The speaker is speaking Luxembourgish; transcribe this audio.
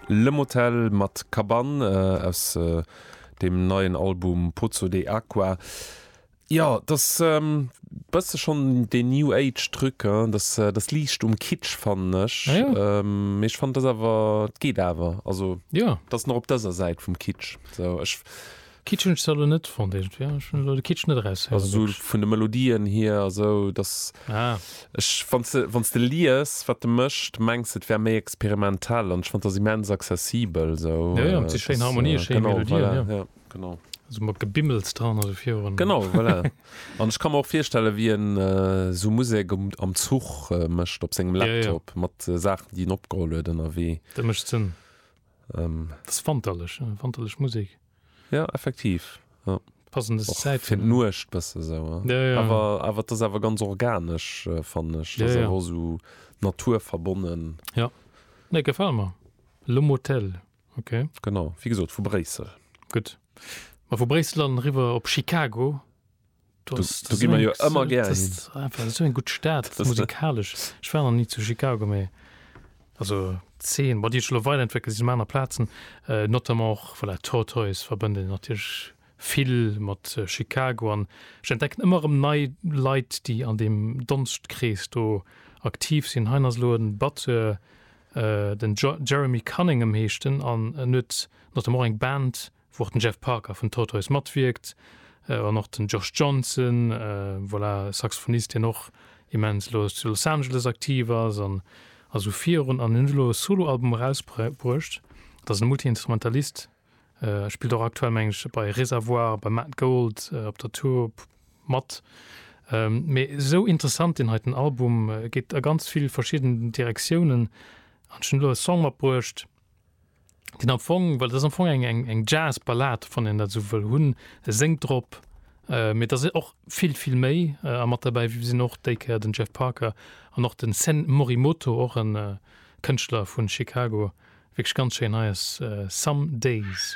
Le Motel mat Kabann aus deem neien Album Pozzo de Aqua. Jo, et ass e bësse schonn dee New Age Truc, et ass liicht um Kitsch fannen ech, mee ech fannen et ass awer, et geet awer, also et ass nach op dëser Säit vum Kitsch. Kitschend soll en net fonnt irgendwie, ja ech hunn elo de Kitsch net eraus héieren. Also sou wierklech. vun de Melodien hier a sou, dass Ah. ech, wann s de, wann s de lies wat e mécht, mengs et wär méi experimentell an ech fonnt dass immens accessibel sou. Jo jo, et si schéin Harmonien, schéi Genau, Melodien, voilà, jo. jo, genau. Sou mat Gebimmels dran a sou virun. Genau, voilà. An ech ka mer och virstellen, wéi en sou Musek um, am Zuch mécht op sengem Ja, ja. Laptop mat Saachen déi en opgeholl huet ënnerwee. Dat mécht Sënn. Ass wanterlech, wanterlech Musek. Jo effektiv jo passendes Zäit fir d'Nuecht bësse sou awer awer et ass awer ganz organesch fannen ech jo jo ass esou Natur verbonnen jo nee gefält mer Le Motel ok genau wéi gesot vu Bréissel gutt ma vu Bréissel an eriwwer op Chicago. Du, du gi mer jo ëmmer gär hin. Einfach so eng gut Stad musikalisch. Ech war noch nie zu Chicago méi. Also 10 wat Dir lo weile entweckelt si maner Plazen äh, notamment och vu der Tortoise verbënde natierlech vill mat äh, Chicago an ech entdecken ëmmer ëm nei Leit, déi an deem Donstkrees do aktiv sinn. Hein ass lo en Batteur, äh, den Jeremy Cunningham heescht en an en huet notamment och eng Band, wou och den Jeff Parker vun Tortoise matwierkt an och den Josh Johnson, voilà, Saxophonist deen och immens elo zu Los Angeles aktiv ass an esou virun an hien huet elo e Soloalbum erausbruecht. Et ass e Multiinstrumentalist, spillt och aktuell meng ech bei Reservoir, beim Matt Gold op der Tour mat. Mee esou interessant deen heiten Album, geet a ganz vill verschidden Direktiounen an ech hunn elo e Song matbruecht, den am Fong, well das am Fong eng eng eng Jazz Ballad wann en dat sou wëll hunn, e séngt drop, äh, mee dass e och vill vill méi äh, a mat derbäi sinn och déi Kéier den Jeff Parker an och den Sen Morimoto, och en äh, Kënschtler vun Chicago, wierklech ganz schéin, hei ass äh, Some Days.